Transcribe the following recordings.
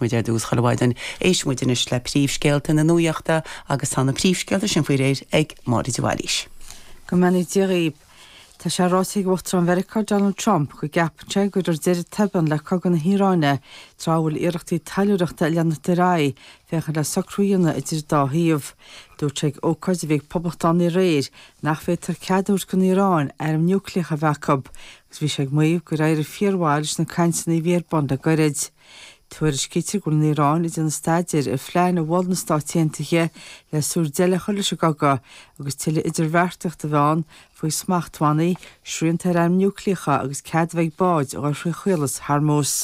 muid ar dtús chuile mhaidin, éistfidh muid anois le príomhscéalta na nuachta agus tá na príomhscéalta sin faoi réir ag Máire de Bhailís. Go mbeannaí Dia dhaoib. Tá sé ráite ag Uachtarán Mheiriceá Donald Trump go gceapann sé go mbeidh deireadh tobann le cogadh na hIaráine tráth a bhfuil iarrachtaí taidhleoireachta ag leanacht ar aghaidh féachaint le socrú a dhéanamh idir an dá thaobh. Dúirt sé ag ócáid a bhí ag poblachtánaigh aréir nach bhféadfadh cead a thabhairt don Iaráin airm niúcléacha a bheith acu agus bhí sé ag maíomh gur éirigh fíor-mhaith leis na cainteanna a bhí ar bun le gairid. Tuairiscítear go bhfuil an Iaráin ag déanamh staidéir ar phlean a mhol na Stáit Aontaithe le súil deireadh a chur leis an gcogadh agus tuilleadh idirbheartaíochta a bheith ann faoi smachtbhannaí, srianta ar airm núiclíocha agus cead a bheith ag báid a ghabh thrí Chaolas Hormuz.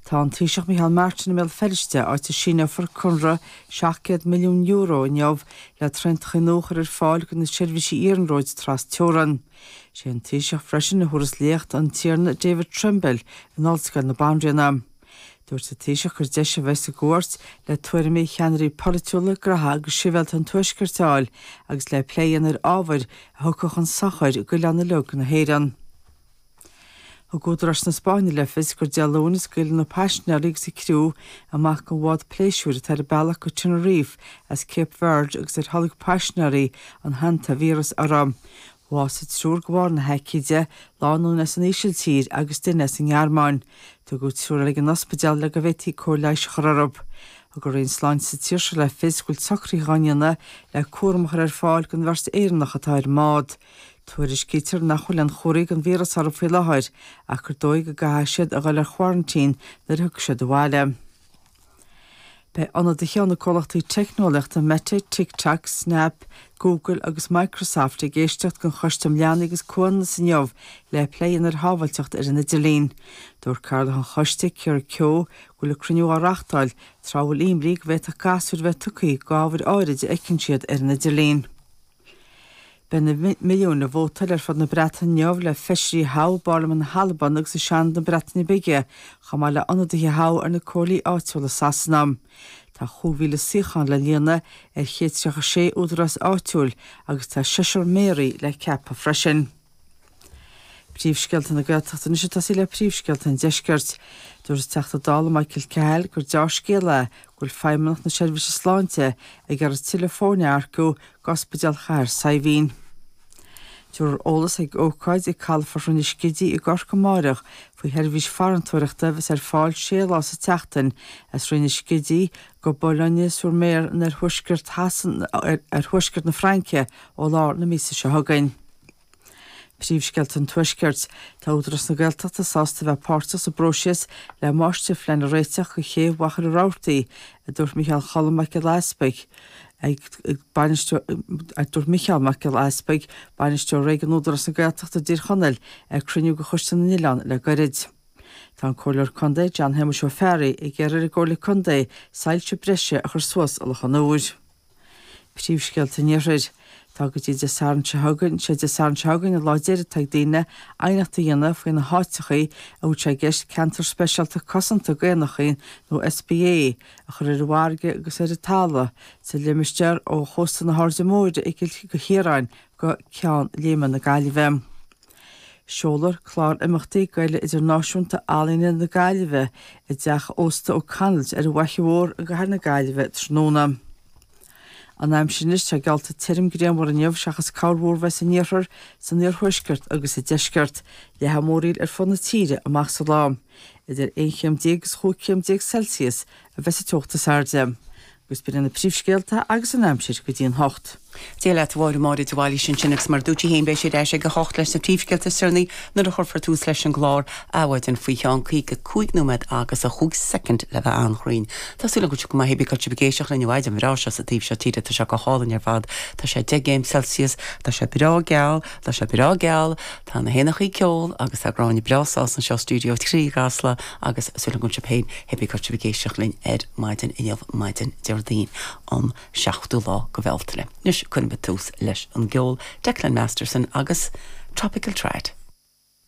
Tá an Taoiseach Micheál Martin i mBéal Feirste, áit a síneofar conradh €700 milliún inniu le traenacha nua a chur ar fáil chuig na seirbhísí iarnróid trasteorann. Sé an Taoiseach freisin a thabharfas léacht an Tiarna David Trimble in Ollscoil na Banríona. Dúirt an Taoiseach gur deis a bheidh sa gcuairt le tuairimí ceannairí polaitiúla, graithe agus sibhialta an Tuaiscirt a fháil agus le plé a dhéanamh ar ábhair a thiocfadh chun sochair d'oileán uilig na hÉireann. Thug údaráis na Spáinne le fios gur Dé Luain a scaoilfear na paisinéirí agus an criú amach den bhád pléisiúir atá ar a bealach go Tenerife as Cape Verde agus ar tholg paisinéirí an hantavírus orthu. Bhásaigh triúr de bharr na haicíde, lánúin as an Ísiltír agus duine as an nGearmáin. Tugadh triúr eile ag an ospidéal le go bhféadfaí cóir leighis a chur orthu. Thug an Roinn Sláinte sa tír seo le fios go bhfuil socruithe á ndéanamh le cúram a chur ar fáil don bheirt Éireannach atá ar an mbád. Tuairiscítear nach bhfuil aon chomharthaí den víreas orthu faoi láthair, ach gur dóigh go gcaithfidh siad a dhul ar quarantine nuair a thiocfaidh siad abhaile. Beidh ionadaithe ó cheann de na comhlachtaí teicneolaíochta Meta, TikTok, Snap, Google agus Microsoft ag éisteacht ag an gCoiste um Leanaí agus Comhionannas inniu le plé a dhéanamh ar shábhailteacht ar an idirlíon. Dúirt Cathaoirleach an Choiste, Keira Keogh, go bhfuil an cruinniú á reachtáil tráth a bhfuil imní go bhféadfadh gasúir bheith tugtha go ábhair áirid a fheiceann siad ar an idirlíon. Beidh na milliúin ag vótáil ar fud na Breataine inniu le feisirí a thoghadh i bParlaimint na hAlban agus i Seanad na Breataine Bige, chomh maith le ionadaithe a thoghadh ar na comhairlí áitiúla i Sasana. Tá chúig mhíle suíochán le líonadh ar chéad tríocha sé údarás áitiúil agus tá seisear méaraí le ceapadh freisin. Príomhscéalta na Gaeltachta anois ag tosú le príomhscéalta an deiscirt. Dúirt an Teachta Dála Michael Cahill gur deá-scéal é go bhfuil Feidhmeannacht na Seirbhíse Sláinte ag iarraidh tuilleadh foirne a earcú d'Ospidéal Chathair Saidhbhín. Tabharfar eolas ag ócáid ag calafort Rinn an Scidígh i gCorcaigh amáireach faoi sheirbhís farantóireachta a bheas ar fáil sé lá sa tseachtain as Rinn an Scidígh go Boulogne-sur-Mer in oirthuaisceart na Fraince ó lár na míosa seo chugainn. Príomhscéalta an Tuaiscirt. Tá Údarás na Gaeltachta sásta bheith páirteach sa bpróiseas le máistirphlean a réiteach do chéibh Mhachaire Rabhartaigh, a dúirt Micheál Cholm Mac Giolla Easbuig, Bainisteoir, a dúirt Micheál Mac Giolla Easbuig, Bainisteoir Réigiúnach Údarás na Gaeltachta i dTír Chonaill, ag cruinniú de Choiste na nOileán le gairid. Tá an Comhairleoir Contae, John Shéamuis Ó Fearraigh, ag iarraidh ar an gComhairle Contae soilse breise a chur suas i Loch an Iúir. Príomhscéalta an Iarthair. Tá go dtí Dé Sathairn seo chugainn, sé Dé Sathairn seo chugainn an lá deiridh atá ag daoine aighneacht a dhéanamh faoi na háiteachaí a bhfuil sé i gceist Ceantar Speisialta Cosanta d'Éanachaí nó SPA a chur ar an bhfarraige agus ar an talamh sa limistéar ó chósta na hAirde Móire i gCill Chiaráin go Ceann Léime na Gaillimhe. Seolfar clár imeachtaí d'Fhéile Idirnáisiúnta Ealaíona na Gaillimhe i dTeach Ósta O'Connell's ar an bhFhaiche Mhór i gCathair na Gaillimhe tráthnóna. An aimsir anois, tá geallta tirim grianmhar inniu seachas corrmhúr a bheith san iarthar, san iarthuaisceart agus sa deisceart, leathfaidh múraíl ar fud na tíre amach sa lá, idir aon chéim déag agus chúig chéim déag Celsius a bheas an teocht is airde. Agus b'in iad na príomhscéalta agus an aimsir go dtí an hocht. Dia leat, a Mháire, Máire de Bhailís ansin agus mar a dúirt sí féin beidh sí ar ais ag a hocht leis na príomhscéalta is deireanaí nuair a chuirfear tús leis an gclár Adhmhaidin faoi cheann 55 nóiméad agus 5 soicind le bheith an-chruinn. Tá súil againn go bhfuil sibh go maith pé bith cá bhfuil sibh ag éisteacht linn an mhaidin bhreá seo sa taobh seo tíre tá sé go hálainn ar fad tá sé 10 gcéim celsius tá sé breá geal tá sé breá geal tá na héanachaí ag ceol agus tá Gráinne breá sásta anseo i stiúideo trí i gCasla agus súil againn go bhfuil sibh féin, pé bith cá bhfuil sibh ag éisteacht linn ar maidin inniu, maidin Déardaoin, an 7ú lá de Bhealtaine. Anois, cuirfidh muid tús leis an gceol, Declan Masterson agus Tropical Trad.